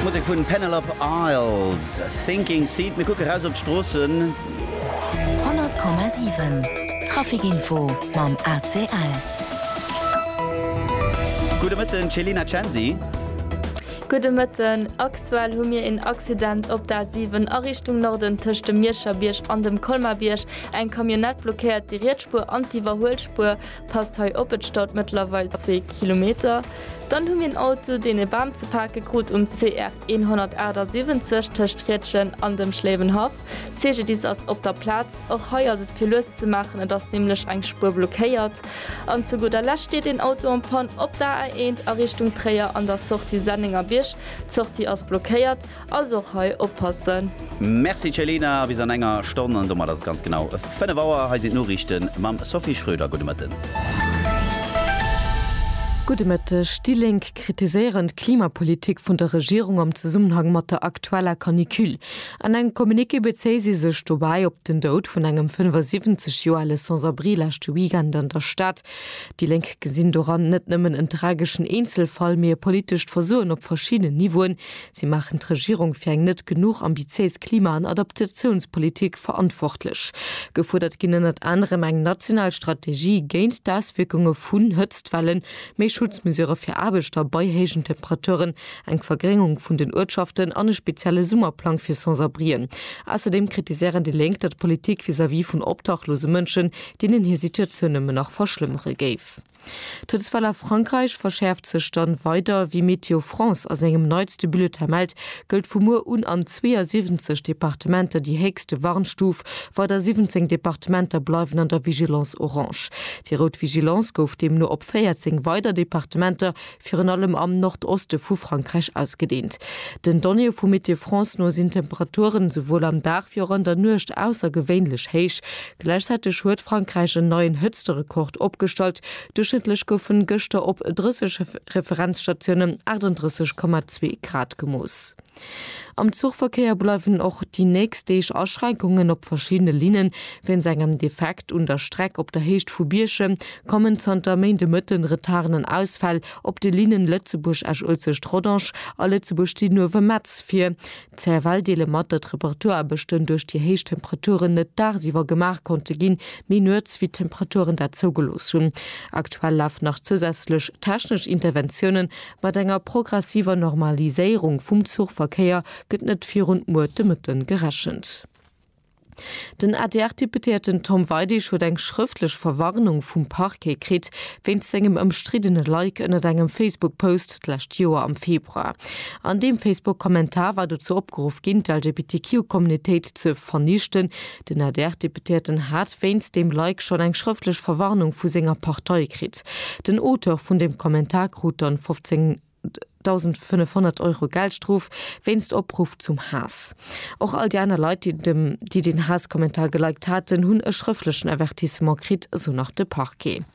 Musek vun Penelope Isles, Sinking Seed. Mir kucke raus op d'Stroossen. 100,7 Traficinfo mam ACL. Gudde Mëtten, Céline Acensi. Gudde Mëtten. Aktuell hu mir een Accident op der A7 a Richtung Norden tëscht dem Mierscher Bierg an dem Colmar Bierg. Eng Camionnette blockéiert déi riets Spuer an d'Iwwerhuelspuer. Passt hei op, et staut mëttlerweil zwee Kilometer. Dann hu mir en Auto, deen e Bam ze pake krut um CR 178 tëscht Riedgen an dem Schléiwenhaff. Cegedis ass op der Plaz. Och hei ass et fir lues ze maachen, et ass nämlech eng Spuer blockéiert. An zu gudder Lescht steet een Auto en Panne op der A1 a Richtung Tréier an der Sortie Sennengerbierg. D'Sortie ass blockéiert. Also och hei oppassen. Merci Céline, a bis an enger Stonn, an domat ass et ganz genau 5 Auer. Hei sinn d'Noriichte mam Sophie Schröder. Gudde Mëtten. Gudde Mëtteg. Déi Lénk kritiséieren d'Klimapolitik vun der Regierung am Zesummenhang mat der aktueller Canicule. An engem Communiqué bezéie si sech dobäi op den Doud vun engem 75 Joer ale Sans-abri leschte Weekend an der Stad. Déi Lénk gesinn doran net nëmmen en trageschen Eenzelfall, mee e politescht Versoen op verschiddenen Niveauen, Si maachen d'Regierung fir eng net genuch ambitiéis Klima an Adaptatiounspolitik verantwortlech. Gefuerdert ginn ënnert anerem eng national Strategie géint d'Auswierkunge vun Hëtztwellen, méi Schutzmesurë fir Aarbechter bei héijen Temperaturen, eng Vergréngung vun den Uertschaften an e spezielle Summerplang fir Sans-abrien. Ausserdeem kritiséieren déi Lénk, datt d'Politik vis-à-vis vun obdachlose Mënschen, deenen hir Situatioun nëmmen nach verschlëmmere géif. D'Toudeswell a Frankräich verschäerft sech dann weider. Wéi Météo France a sengem neitste Bulletin mellt, gëllt vu muer un an 72 Departementer déi héchste Warnstuf. Weider 17 Departementer bleiwen an der Vigilance Orange. Déi rout Vigilance gouf deemno op 14 weider Departementer virun allem am Nordoste vu Frankräich ausgedeent. Den Donnéeë vu Météo France no sinn d'Temperaturen esouwuel am Dag wéi och an der Nuecht aussergewéinlech héich. Gläichzäiteg huet Frankräich en neien Hëtzterekord opgestallt, Duerchschnëttlech goufen gëschter op 30 Referenzstatiounen 38,2 Grad gemooss. Am Zuchverkéier bleiwen och déi nächst Deeg Aschränkungen op verschiddene Linnen. Wéinst engem Defekt un der Streck op der Héicht vu Bierchem kommen zanter Méind de Mëtten Retarden an Ausfäll op de Linnen Lëtzebuerg-Esch-Uelzecht-Rodange a Lëtzebuerg-Didenhoven-Metz vir. D'CFL deele mat, datt Reparaturaarbechten duerch déi héich Temperaturen net dagsiwwer gemaach konnte ginn, mee nuets, wéi d'Temperaturen dat zougelooss hunn. Aktuell lafen nach zousätzlech technesch Interventiounen Mat enger progressiver Normaliséierung vum Zuchverkéier gëtt net virun muer de Mëtten gerechent. Den ADR-Deputéierten Tom Weidig huet eng schrëftlech Verwarnung vum Parquet kritt, wéinst sengem ëmstriddene Like ënnert engem Facebook-Post d'lescht Joer am Februar. An deem Facebook-Kommentar war dozou opgeruff ginn, d'LGBTQ-Communautéit ze vernichten, Den ADR-Deputéierten hat wéinst deem Like schonn eng schrëftlech Verwarnung vu senger Partei kritt. Den Auteur vun dem Kommentar krut dann 15.500 Euro Geldstrof wéinst Opruff zum Haass. Och all déi aner Leit, déi den Haass-Kommentar geliked haten, hunn e schrëflechen Avertissement kritt, esou nach de Parquet.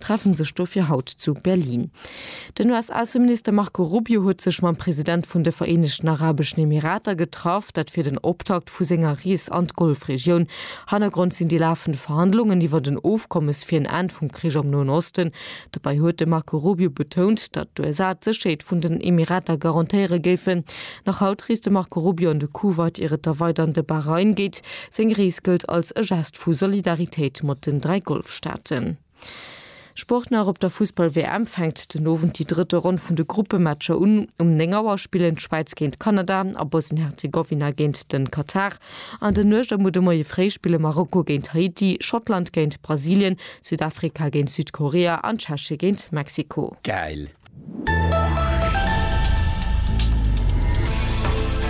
treffen sech dofir haut zu Berlin. Den US-Ausseminister Marco Rubio huet sech mam President vun de Vereenegten Arabeschen Emirater getraff, dat fir den Optakt vu senger Rees an d'Golfregioun. Hannergrond sinn déi lafend Verhandlungen iwwert en Ofkommes fir en Enn vum Krich am Noen Osten. Dobäi huet de Marco Rubio betount, datt d'USA d'Sécherheet vun den Emirater garantéiere géifen. Nach haut reest de Marco Rubio an de Kuwait ier et da weider an de Bahrain geet. Seng Rees gëllt als e Gest vu Solidaritéit mat den dräi Golfstaaten. Sport nach, Op der Fussball-WM fänkt den Owend déi drëtte Ronn vun de Gruppematcher un. Um 9 Auer spillen d'Schwäiz géint Kanada a Bosnien-Herzegowina géint den Katar. An der Nuecht a muer de Moie fréi spille Marokko géint Haiti, Schottland géint Brasilien, Südafrika géint Südkorea an Tscheche géint Mexiko. Gäil!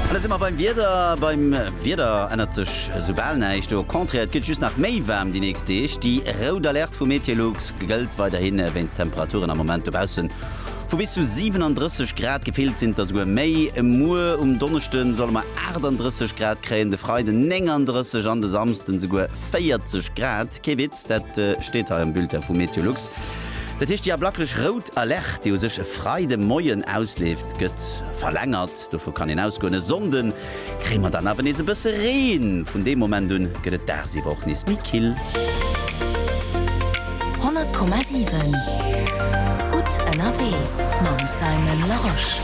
An da si mer beim Wieder. Beim Wieder ännert sech esou bal näischt, au contraire, et gëtt just nach méi waarm déi nächst Deeg. Déi rout Alerte vu Meteolux gëllt weiderhi wéinst Temperaturen am Moment dobausse vu bis zu 37 Grad, gefillt sinn et der souguer méi. Muer um Donneschde solle mer 38 Grad kréien, de Freiden 39 an de Samsden esouguer 40 Grad. Kee Witz, dat steet hei am Bulletin vu Meteolux. Dat heescht, déi ablaklech rout Alerte, déi u sech e Freide Moien ausleeft, gëtt verlängert. Dovu kann een ausgoen. E Sonnde kréie mer dann awer nees e bësse Reen. Vun deem Moment un gëtt et dagsiwwer och nees méi kill. 100,7 Gutt ënnerwee mam Simon Larosche.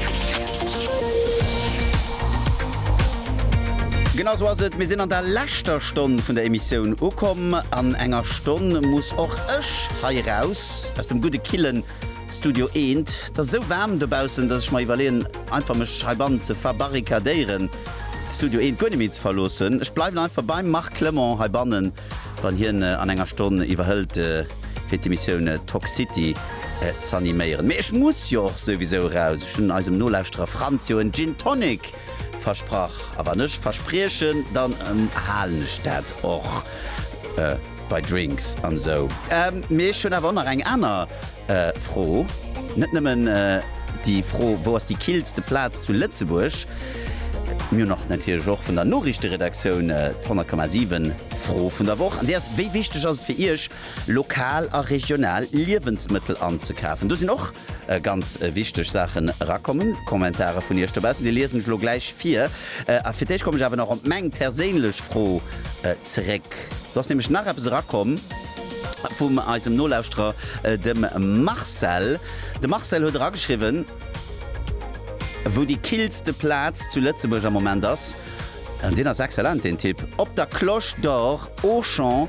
Genau esou ass et, mir sinn an der leschter. Stonn vun der Emissioun ukomm. An enger Stonn muss och ech hei raus aus dem gudde killen Studio eent. Et ass esou waarm dobaussen, dass ech mer iwwerleeën einfach mech heibannen ze verbarrikadéieren, d'Studio eent guer net méi ze verloossen. Ech bleiwen einfach beim Marc Clement heibannen, wann hien an enger Stonn iwwerhëlt fir d'Emissioun Tock City z'animéieren. Mee ech muss jo och souwisou raus. Ech hunn eisem Nolauschterer Franz jo en Gin Tonic Versprach. A wann ech verspriechen, dann halen ech dat och. Bei Drinks an esou. Mee ech hunn awer och nach eng aner Fro. Net nëmmen déi Fro, wou ass déi killste Plaz zu Lëtzebuerg? Mir hunn och natierlech och vun der Noriichteredaktioun d'100,7 Fro vun der Woch. An déi ass, Wéi wichteg ass et fir Iech, lokal a regional Liewensmëttel anzekafen? Do sinn och Ganz wichteg Saachen erakommen, Kommentare vun iech dobaussen, déi liesen ech elo gläich vir. A fir d'éischt kommen ech awer nach op meng perséinlech Fro zeréck. Do ass nämlech nach eppes erakomm vum eisem Nolauschterer, dem Marcel. De Marcel huet erageschriwwen, wou déi killste Plaz zu Lëtzebuerg am Moment ass. An deen ass excellent, deen Tipp, Op der Cloche d'Or, Auchan,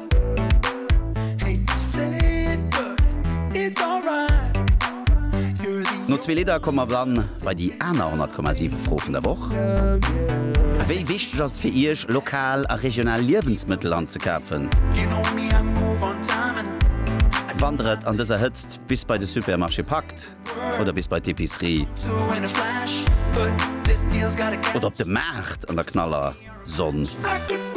No zwee Lidder komme mer dann bei déi aner 100,7 Fro vun der Woch. Wéi wichteg ass et fir Iech, lokal a regional Liewensmëttel anzekafen? Wandert et an dëser Hëtzt bis bei de Supermarché packt oder bis bei d'Epicerie oder op de Maart an der knaller Sonn?